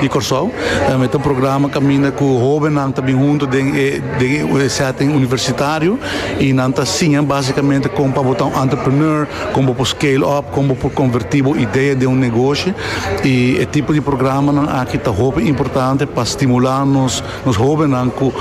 di Kòrsou. Mi ta un programa kaminda ku hóbennan ta bin huntu den e den e sèting universitario i nan ta siña básikamente kon pa bo ta un entrepreneur, kon bo por scale up, kon bo por konvertí bo idea den un negoshi. I e tipo di programanan aki ta hopi importante pa stimulá nos nos hóbennan ku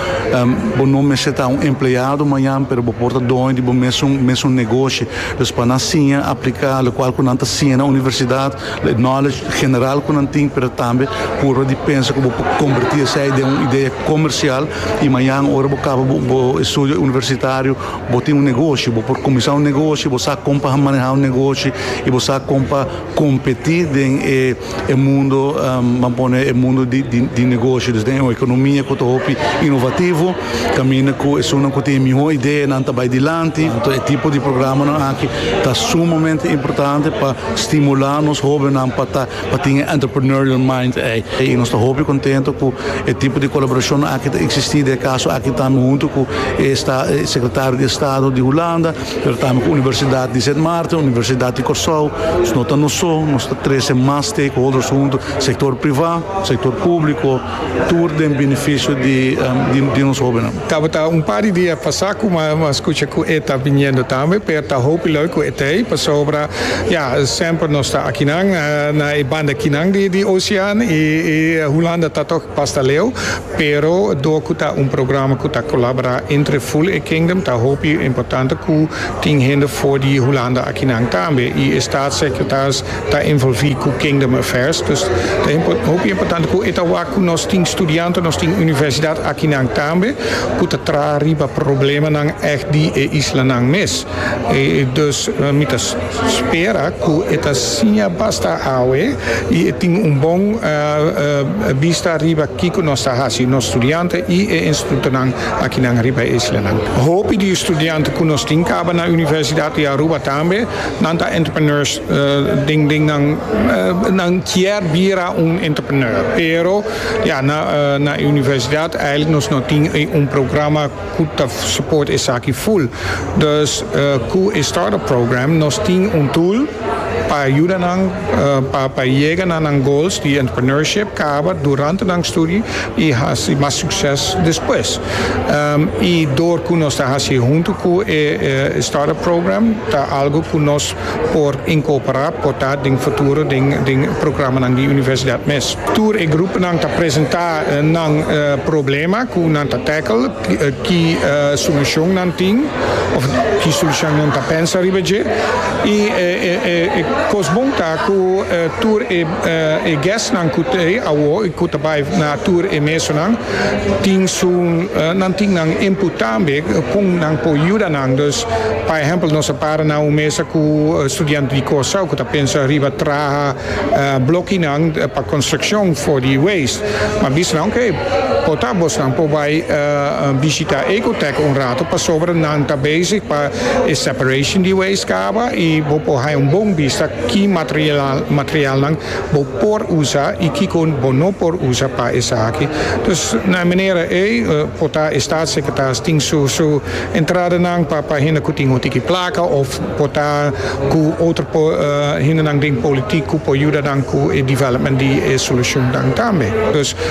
bo no mester ta un empleado mañan pero bo por ta doño di bo mesun mesun negoshi. Dus pa nan siña apliká lokual ku nan ta siña na universidat Lei knowledge general ku nan tin pero tambe purba di pensa ku bo por kombertí esei den un idea komersial i mañan ora bo kaba bo estudio universitario bo tin un negoshi bo por kuminsá un negoshi bo sa kon pa manehá un negoshi i bo sa kon pa kompetí den e mundo ban pone e mundo di negoshi den un ekonomia ku ta hopi inovativo. Caminda cu esunnan cu tin e miho ideanan ta bay dilanti. Entonces e tipo di programanan aki ta sumamente importante pa stimula nos hobennan pa ta pa tin e entrepreneurial mind ey. Y nos ta hopi contento cu e tipo di colaboracionnan aki ta existi den e caso aki tambe hunto cu e esta e Secretario di Estado di Hulanda, pero tambe cu Universidad di Sint Maarten, Universidad di Corsou. Nos no ta nos so, nos ta trece mas stakeholders hunto, sector priva, sector publico. tur den benefisio di nos hobennan. Tabata un par di dia pasa cu mi a scucha cu e ta biniendo tambe, pero ta hopi loy cu e ta ei, pasobra ya, semper nos ta akinan na e banda kinan di ocean y Hulanda ta toch basta leu, pero dor cu ta un programa cu ta colabora entre full e Kingdom ta hopi importante cu tin hende for di Hulanda akinan tambe y e staatssecretaris Ta envolvi cu Kingdom Affairs, dus ta hopi importante cu e ta wak cu nos tin studianten, nos tin universidad akinan tambe cu ta traha riba problemanan echt di e islanan mes. Dus mi ta spera cu e ta siña basta awe y e tin un bon bista riba kico nos ta haci, nos studianten y e institutonan akinan riba e islanan. Hopi di e studianten cu nos tin caba na Universidad di Aruba tambe Nan ta entrepreneurs den den nan nan kier bira un entrepreneur pero ya na na e universidad eigenlijk nos no tin e un programa cu ta support esaki full dus cu e startup program nos tin un tool pa yuda nan pa pa yega na nan goals di entrepreneurship caba durante nan studie y haci mas succes despues. Y door cu nos ta haci hunto cu e Startup Program ta algo cu nos por incorpora porta den futuro den programanan di universidad mes. Tur e gruponan ta presenta nan problema cu nan ta tackle, ki solucion nan tin of ki solucion nan ta pensa riba dje. Y e cos bon ta cu tur e. E guestnan cu ta ei awo y cu ta bay na tur e mesonan tin su, nan tin nan input tambe con nan por yuda nan. Dus, pa ehempel, nos a para na un mesa cu studianten di Curaçao cu ta pensa riba traha blokinan pa construccion for di waste. Mi a bisa nan, ok, por ta abosnan por bay bishita Ecotech un rato pasobra nan ta bezig pa. E separation di waste kaba y bo por haña un bon bista ki materialnan bo por usa y kiko bo no por usa pa esaki. Dus na e manera ei por ta e Staatssecretaris tin su su entradanan pa pa hende cu tin un tiki placa of por ta cu otro hendenan den politiek cu por yuda nan cu e development di e solucionnan tambe.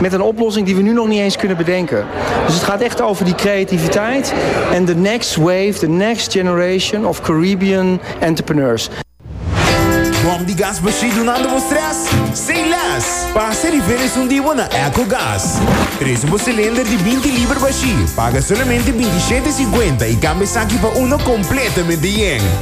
met een oplossing die we nu nog niet eens kunnen bedenken. Dus het gaat echt over die creativiteit en the next wave, the next generation of Caribbean entrepreneurs. Bom di gas bashí dunando bo stress? Say less! Pasa e rifer esun di bo na Echo Gas. Presu bo cilinder di binti liber bashí, paga solamente binti shete e cincuenta i cambia esaki pa uno completamente yen.